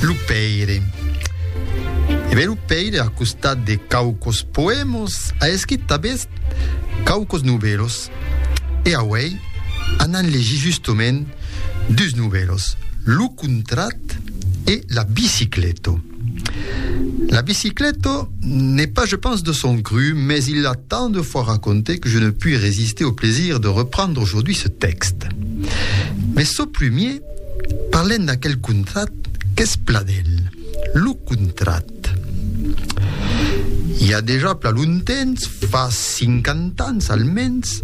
Lo Pèire. E ben lo Pèire, a costat de quauquos poèmos, a escrit tanben quauquos novèlos. E auèi anam legir justament dus novèlos, Lo Contrat e La Biciclèto. La Biciclèto n'est pas, je pense, de son cru, mais il l'a tant de fois raconté que je ne puis résister au plaisir de reprendre aujourd'hui ce texte. Mais ce premier Parlem d'aquel contrat qu'es pla d'el, lo contrat. I a dejà pla lontemps, fa cinquanta ans almens,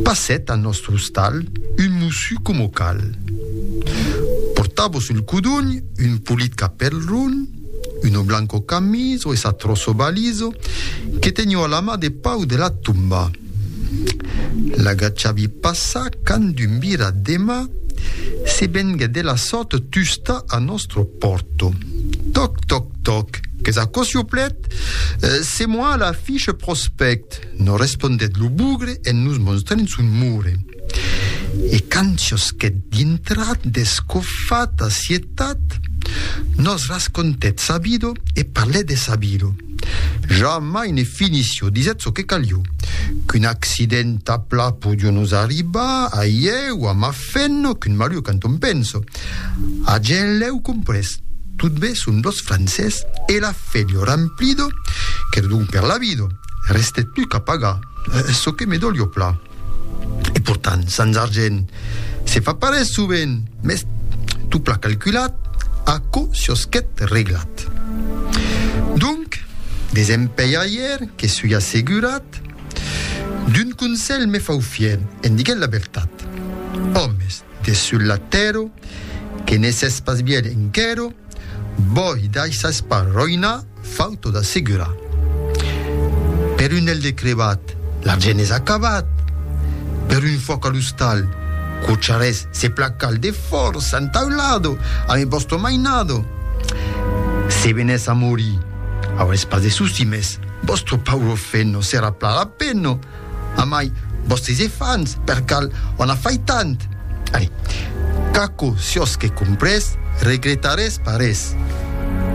passèt al nòstre ostal un mossu coma cal. Portava sul codonh un polit capèl ron, uno blanco camiso e sa troço baliso que tenió a la mà de pau de la tomba. L'agachavi passa quand d'un vira dema se vengue de la sòrt tusta a nòstro pòrto. Toc, toc, toc, qu'es aquò siuplet? Se moi a la fiche prospect, nos respondèt lo bugre en nos monstrent son mure. E quand chosquèt dintra deth cofar tà cietat, nos rascontèt sa vido e parlèt de sa vido. Jamai ne finissi o disèt çò que calió. Qu'un accident a pla podió nos arribar, a ié o a ma fenno, qu'un malur quand on penso. A gent lèu comprés. Tot be son dos francés e la fèlio ramplido, qu'er don per la vido. Restèt plus qu'a pagar. Çò que me dolió pla. E portant sans argent se fa parés sovent, mes tot pla calculat, aquò siosquèt reglat. Donc, desempelhaire que sui assegurat, d'un conselh me fau fier en diguent la vertat. Òmes! De sul la tèrra, que ne sès pas bièlh enquèra, bòi daissas pas roinar, fau tot assegurar. Per un hèl de crebat, l'argent es acabat, per un fuòc a l'ostal, cocharès se placal de fòrça entaulado amé vòsto mainado. Se venès a morir, aurès pas de souci, mès vòsto pauro feno serà pla la pena. Amai, vòstres efants, per cal on a fait tant? Allez, qu'aquò siòsque comprés, regretarés pas res.